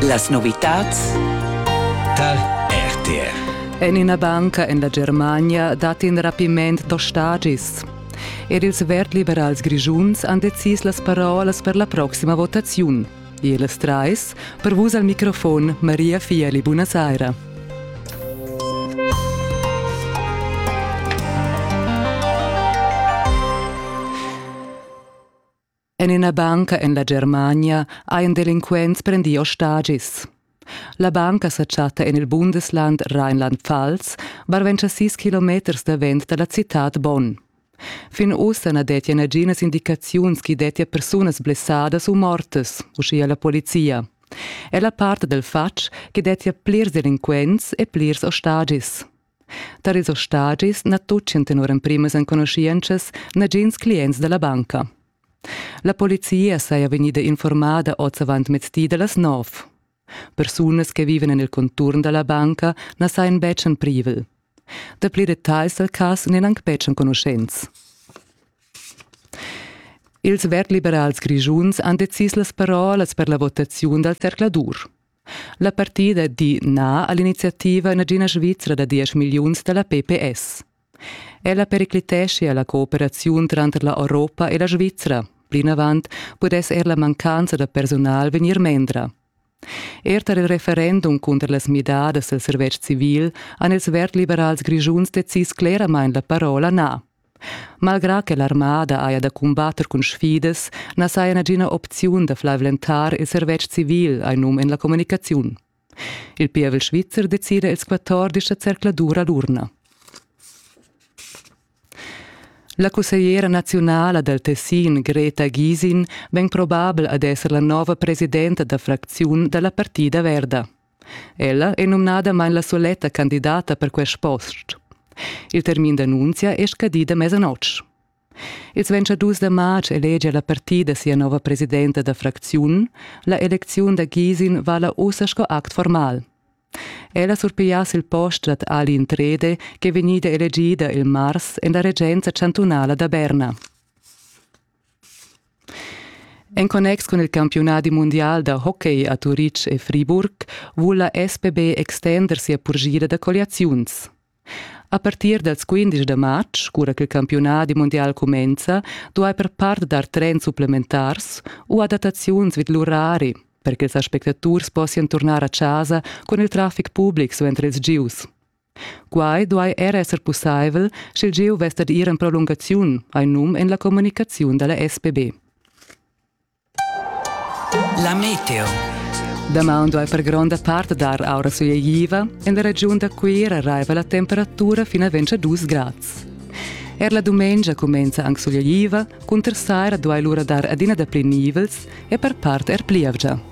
Las novitads tar RTR. En ina banca en la Germania dat in rapiment d'ostagis. Er ils vertliberals grischuns han decis las parolas per la proxima votaziun. Ils trais, per vus al microfon Maria Fieli, buonasera. En ina banca en la Germania hajan delinquents prendì ostagis. La banca sa chatta en il Bundesland Rheinland-Pfalz, barventscha sis kilometers davent da la citad Bonn. Fin ussa na dettia naginas indicaziuns ch'i dettia persunas blessadas u mortas, uschia la polizia. È la part del fatg che dettia plirs delinquents e plirs ostagis. Tar ils ostagis na tutgan tenor emprimas enconuschientschas nagins clients da la banca. La polizia saja vegnida informada oz avant mezdi da las nov. Persunas che vivan en il conturn da la banca na sajan betg en privel. Dapli detagls dal cas n'eran anc betg enconuschents. Ils verd-liberals grischuns han decis las parolas per la votaziun dal zercladur. La partida di na a l'iniziativa nagina Svizra da diesch milliuns da la PPS. Ella periclitescia la cooperaziun tranter la Europa e la Svizra. Plinavant pudess er la mancanza da personal vegnir mendra. Er tar il referendum cunter las midadas del servetsch civil han ils verd-liberals grischuns decis cleramain la parola na. Malgrà che l'armada haja da cumbatter cun sfidas, na saja nagina opziun da flavlentar il servetsch civil, hai num en la communicaziun. Il pievel svizzer decida ils quattordisch da zercladur a l'urna. La cussegliera naziunala dal Tessin, Greta Gisin, vegn probabel ad esser la nova presidenta da fracziun da la Partida Verda. Ella è numnadamain la suletta candidata per quest post. Il termin d'annunzia è scadì da mesanotg. Ils 22 da marz elegia la partida sia nova presidenta da fracziun. La elecziun da Gisin vala ussa sco act formal. Ella surpigliass il post dad Alin Trede che è vegnida elegida il mars en la regenza chantunala da Berna. En connex cun il campiunadi mundial da hockey a Turitg e Friburg vul la SPB extender sia purgira da colliaziuns. A partir dals 15 da marz, cura ch'il campiunadi mundial cumenza, duai per part dar trends supplementars u adattaziuns vid l'urari, per che ils aspectaturs possian turnar a chasa cun il traffic public suenter ils gieus. Quai duai er esser pussaivel, sch'il gieu vess dad ir en prolungaziun, hai num en la communicaziun da la SPB. La meteo. Damaun duai per gronda part dar aura sueigliva. En la regiun da Cuira raiva la temperatura fin a 22 grads. Er la dumengia cumenza anc sueigliva, cunter saira duai lura dar adina dapli nivels e per part er plievgia.